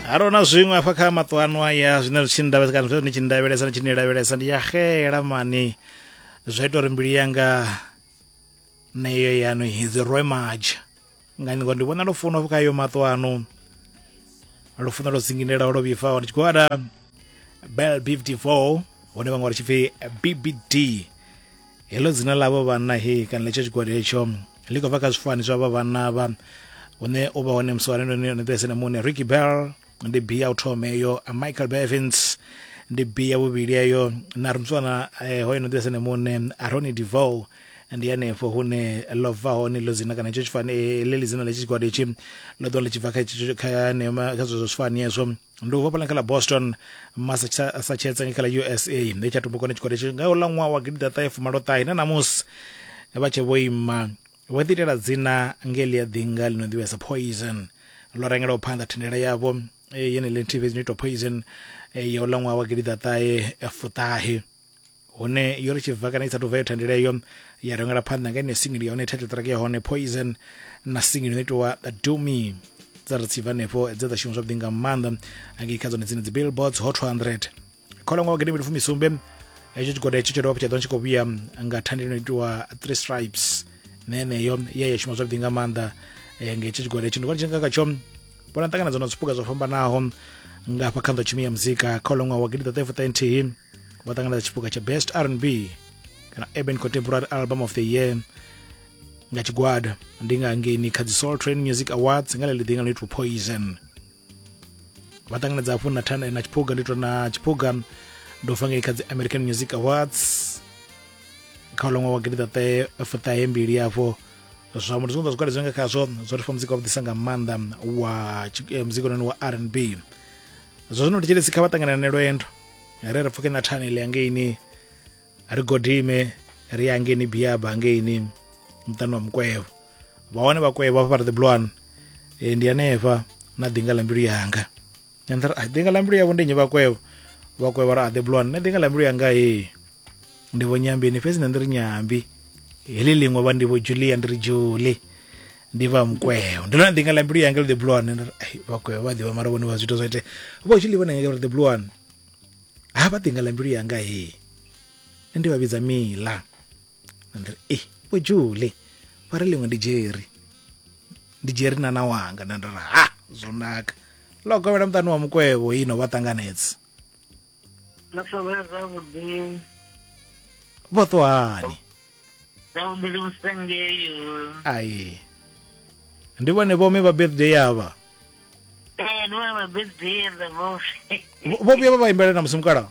haro na zwiṅwe afha kha maṱo ano aya zwine zwi tshi ndavhesa kana zwine tshi ndavhelesa ni tshi ni lavhelesa ndi ya xela mani zwa ita uri mbilu yanga neyo yanu hidzi rwe maja nga ningo ndi vhona lufuno afho kha yo maṱo ano lufuno lwo dzinginelaho lwo vhifhaho ndi tshi khou ada bel 54 hone vhaṅwe vha tshi pfi bbd heḽo dzina ḽa vho vhanna he kana letsho tshigwada hetsho ḽi khou bva kha zwifani zwa vha vhanna vha une u vha hone musi wa lendo ni ḓirese na muṋe ricky bell ndi b ya u thoma eyo michael bevins ndi b ya vhuvhili eyo na ri muswana eh, hoyo no ḓirese na muṋe aroni devow ndi hanefho hune ḽo bva hone ḽo dzina kana itsho tshifani eh, ḽe ḽi dzina ḽa tshi tshigwada itshi ḽo ḓo ḽi tshi bva kha kha zwezwo zwifani ezwo ndi u vhofhela kha ḽa boston massachusetts nga kha ḽa usa ndi tsha tumbukone tshigwada tshi nga ula ṅwaha wa gidida ṱahe fumaloṱahe na ṋamusi vha tshe vho ima vho ḓi itela dzina nge ḽi a ḓinga ḽi no ḓivhesa poison ḽo rengelaho phanḓa thendela yavho yene ḽi nthihi fhedzi no itwa poison ya ula ṅwaha wa gidida ṱahe fuṱahe hune yo ri tshibva kana i sa tuvha yo thandela iyo ya rengela phanḓa nga ine single ya hone title track ya hone poison na single ino itiwa do me dza ri tshibva hanefho dze dza shuma zwavhuḓi nga maanḓa angei kha dzone dzine dzi billboards hot 200 kholomo wa gidimili fumisumbe hetsho tshigwada hetsho tsho dovha tsha ḓo tshi khou vhuya nga thandela ino itiwa three stripes na yeneyo ye ya shuma zwavhuḓi nga maanḓa eh, nga hetsho tshigwada hetsho ndi vhona tshi nga khatsho vhona ṱanganedzano zwipuka zwo fhambanaho nga hafha kha nḓotshumi ya muzika kha ulo ṅwaha wa gidiḓaṱahefuṱaenthihi vho ṱanganedza tshipuka tsha best r n b kana urban contemporary album of the year nga tshigwada ndi nga ngeni kha dzi soul train music awards nga ḽeḽi ḓinga ḽo itwa poison vha ṱanganedza hafhu na thana na tshiphuga ndi to na tshiphuga ndo fa ngei kha dzi american music awards kha ulo ṅwaha wa gidiḓaṱahefuṱahembili afho zwa muthu zwiṅwe zwa zwigwada zwi nga khazwo zwo ri fha muzika wavhuḓisa nga maanḓa wa eh, muzika ononi wa r n b zwa zwino thetshelesi kha vha ṱanganane lwendo ri ri pfuke na thani ḽi angeini ri godime ri ya angeini biaba angeini muṱani wa mukwevho vhahone vhakwevho hafha vha ri the bloan eh, ndi hanefha na ḓinga ḽa mbilu yanga and then i think la mbilu yavho ndi nnyi vhakwevho vhakwevho ra aḓe blon nṋe ḓinga la mbilu yanga he ndi vho nyambini fhedzi nṋe ndi ri nyambi heḽi ḽiṅwe vha ndi vho julia ndi ri juli ndi vha mukweo ndi lona ḓinga la mbilu yanga ḽi the blue one vhakweo vha ḓivha mara vhone vha zwithu zwa ite vho juli vhone nga uri the blue one ha vha ḓinga la mbilu yanga he ndi vha vhidza mila ndi ri e vho jule vha ri ḽiṅwe ndi dzheri ndi dzheri na na wanga nda ndi ri ha zwo naka ḽo kovhela muṱani wa mukwevho ino vha ṱanganedza ḽo kovhela zwavhuḓi vho ṱuhani zwavhuḓi vhusengeyo ai ndi vhone vhome vha birthday yavha ee ndi vhone vha birthday yavha vho vhuya vha vha imbela na musi mukalaho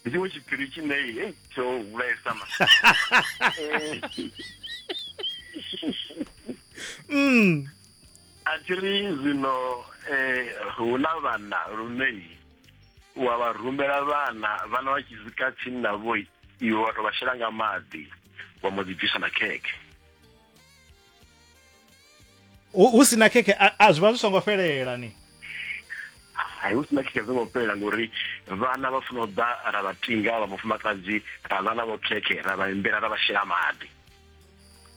ndi tshiṅwe tshiphiri tshine hei tsho vhulaesa ma Eh, mm. a thi ri zwino eh, hu na vhana lune wa vha rumela vhana vhana vha tshi swika tsini navho iwe wa to vha shela nga maḓi wa mbo ḓi bvisa na khekhe hu hu si na khekhe a- a zwi vha zwi songo fhelela ni hai hu sina khekhe songo fhelela ngori vhana vha funa u ḓa ra vha tinga vha mufumakadzi ra ḽa navho khekhe ra vha imbela ra vha shela maḓi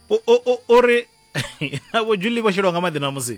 U- u- u- uri navho juli vho shelwa nga maḓi ṋamusi